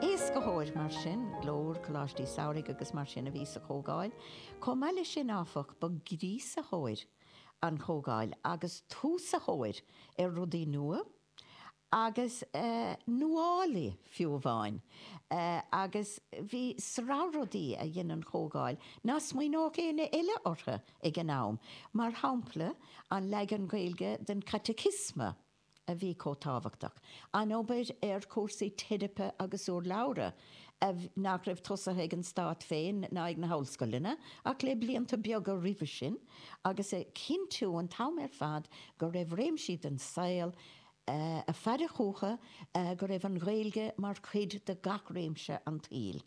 Éascaitheoir, mar sin, Glór, Coláistí Samhraidh agus mar sin a bhí sa Chomhdháil. Chomh maith leis sin, áfach, ba gríosaitheoir an Chomhdháil agus túsaitheoir ar rudaí nua agus nuálaí, fiú amháin, agus bhí sraith rudaí a dhein an Chomhdháil nach smaoineodh éinne eile orthu ag an am, mar shampla, an leagan Gaeilge den Chaiticiosma a. a bhí chomh tábhachtach, an obair ar chúrsaí teiripe agus urlabhra, nach raibh tosaithe ag an stát féin ná ag na hollscoileanna ach le blianta beaga roimhe sin, agus a chinntiú an t-am ar fad go raibh réimsí den saol, ag faire chuige go raibh an Ghaeilge mar chuid de gach réimse an tsaoil.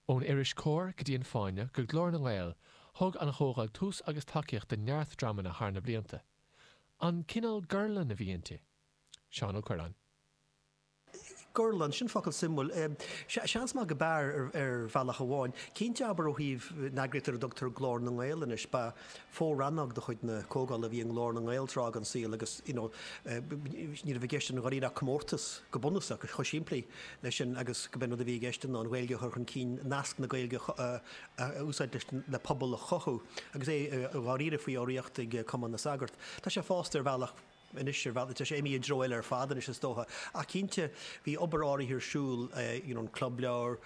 Ón iris Comhar go dtí An Fáinne go Glór na nGael, thug an Chomhdháil tús agus tacaíocht do neart dreamanna thar na blianta. An cineál gorlann a bhí inti? Seán Ó Cuirreáin. Gorlann, sin focal suimiúil. Seans maith gurb ea, ar bhealach amháin. Cinnte, abair, ó thaobh na heagraíochta ar a dtugtar Glór na nGael anois. Ba. fo-rannóg de chuid na Comhdhála a bhí i nGlór na nGael tráth den saol agus you know ní raibh i gceist ann dháiríre ach comórtas, go bunúsach, chomh simplí leis sin agus go b'é an rud a bhí i gceist ná an Ghaeilge a chur chun cinn, nasc na Gaeilge a úsáid leis le pobal a chothú agus é dháiríre faoi urraíocht ag Cumann na Sagart. Tá sé fásta ar bhealach. anois ar bhealaí, tá sé imithe i dtreo eile ar fad anois is dócha, ach cinnte bhí obair áirithe ar siúl you know an Club Leabhar,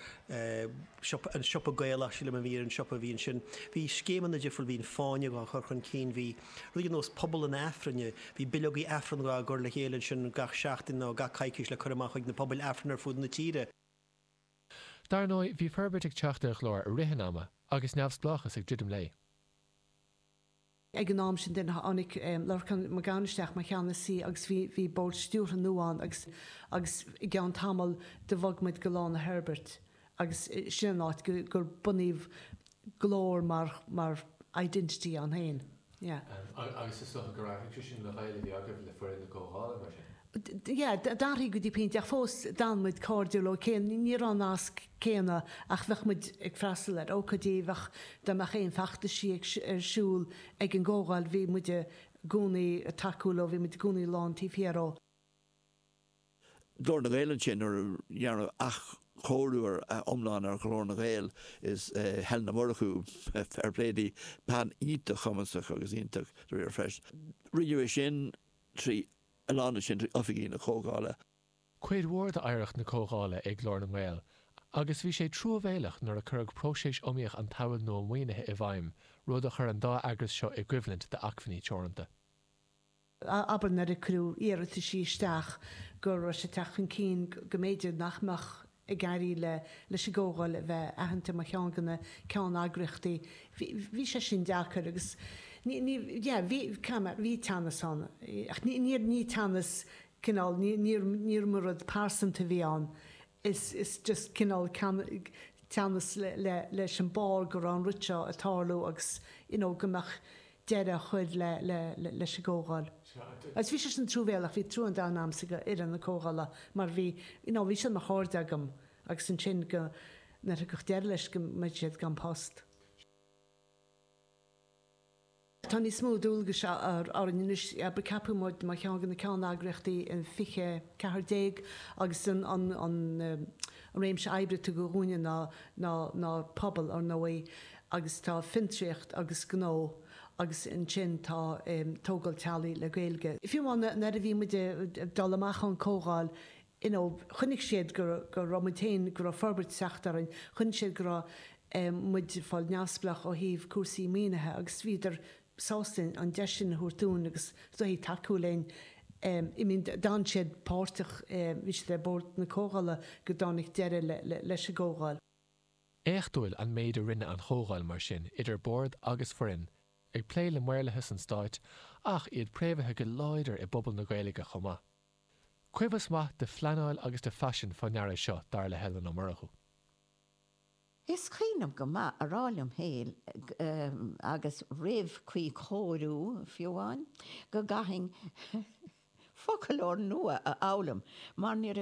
siopa, an siopa Gaelach sílim a bhí ar an siopa a bhí ansin, bhí scéimeanna difriúil, bhí an Fáinne á chur chun cinn, bhí rudaí ar nós Pobal an Aifrinne, bhí bileogaí Aifrinn á gcur le chéile ansin gach seachtain nó gach coicís le cur amach chuig na pobail Aifrinn ar fud na tíre. Dar ndóigh bhí forbairt ag teacht ar Ghlór i rith an ama agus neamhspleáchas ag druidim léi. Ag an am sin then tháinig Lorcán Mac Gabhann isteach mar cheannasaí agus bhí bhí Bord Stiúrtha nua ann agus agus i gceann tamall then bhog muid go Lána Herbert agus sin an áit go gur bunaíodh Glór mar mar identity ann féin. Yeah. Agus is dócha gur athraigh sé sin an gaol a bhí agaibh, le foireann na Comhdhála, mar sin? D'athraigh go dtí pointe ach fós d'fhan muid cairdiúil, óicé ní raibh an nasc céanna ach bheadh muid ag freastal ar ócáidí, bheadh, dá mbeadh aon feachtaisí ag, ar siúl ag an gComhdháil bhí muid i gcónaí ag tacú leo, bhí muid i gcónaí lán taobh thiar díobh. Glór na nGael ansin nuair a dearnadh athchóiriú iomlán ar Ghlór na nGael is Helen Ó Murchú, fair play di, bean iontach cumasach agus iontach, díreach freisin. Rinneadh é sin trí a lána sin chuig oifigí na Comhdhála. Cuid mhór d'oidhreacht na Comhdhála é Glór na nGael agus bhí sé truamhéalach nuair a cuireadh próiseas iomaíoch an tSamhail Nua Maoinithe i bhfeidhm, rud a chuir an dá eagras seo i gcoimhlint d'acmhainní teoranta. Abair nuair a cuireadh iarrataisí isteach go raibh sé ag teacht chun cinn go mb'fhéidir nach mbeadh ag éirí le leis an gComhdháil a bheith aitheanta mar cheann de na ceann-eagraíochtaí. Bhí bhí sé sin deacair agus ní ní yeah bhí karma bhí teannas ann ach ní ní ní teannas cineál ní ní níorbh rud pearsanta a bhí ann is is just cineál ceann teannas le le leis an mar go raibh an rud seo ag tarlú agus you know go mbeadh deireadh á chur leis an gcomhdháil. Agus bhí sé sin truamhéalach, bhí trua an domhain agamsa do fhoireann na comhdhála mar bhí, you know, bhí siad mar chairde agam agus ansin go, nuair thiocfadh deireadh leis go mbeadh siad gan post. Tá níos mó dualgais orainn anois, abair, ceapadh muid mar cheann de na ceanneagraíochtaí in 2014 agus an, an, an, an réimse oibre a tugadh dhúinne ná, ná, ná pobal, ar ndóigh, agus tá Fiontraíocht agus Gnó agus ansin tá Tógáil Teaghlaigh le Gaeilge. Fiú amháin nuair a bhí muid ag dul amach ón Comhdháil you know chonaic siad go raibh muid féin, go raibh forbairt ag teacht orainn, chonaic siad go raibh muid ag fáil neamhspleách ó thaobh cúrsaí maoinithe agus bhíodar sásta an deis sin a thabhairt dúinn agus soithí tacú linn I mean d'fhan siad páirteach, bhí siad ar bord na Comhdhála go dtáinig deireadh leis an gComhdháil. Éachtúil an méid a rinne an chomhdháil mar sin idir bord agus foireann, ag plé le maorlathas an stáit ach iad préamhaithe go láidir i bpobal na Gaeilge chomh maith. Cuibheas maith de phleanáil agus de phaisean fá ndeara seo, dar le Helen Ó Murchú. Is cuimhin liom go maith a rá liom féin, agus roimh cuíchóiriú fiú amháin, go gcaithfinn foclóir nua a fhoghlaim mar ní raibh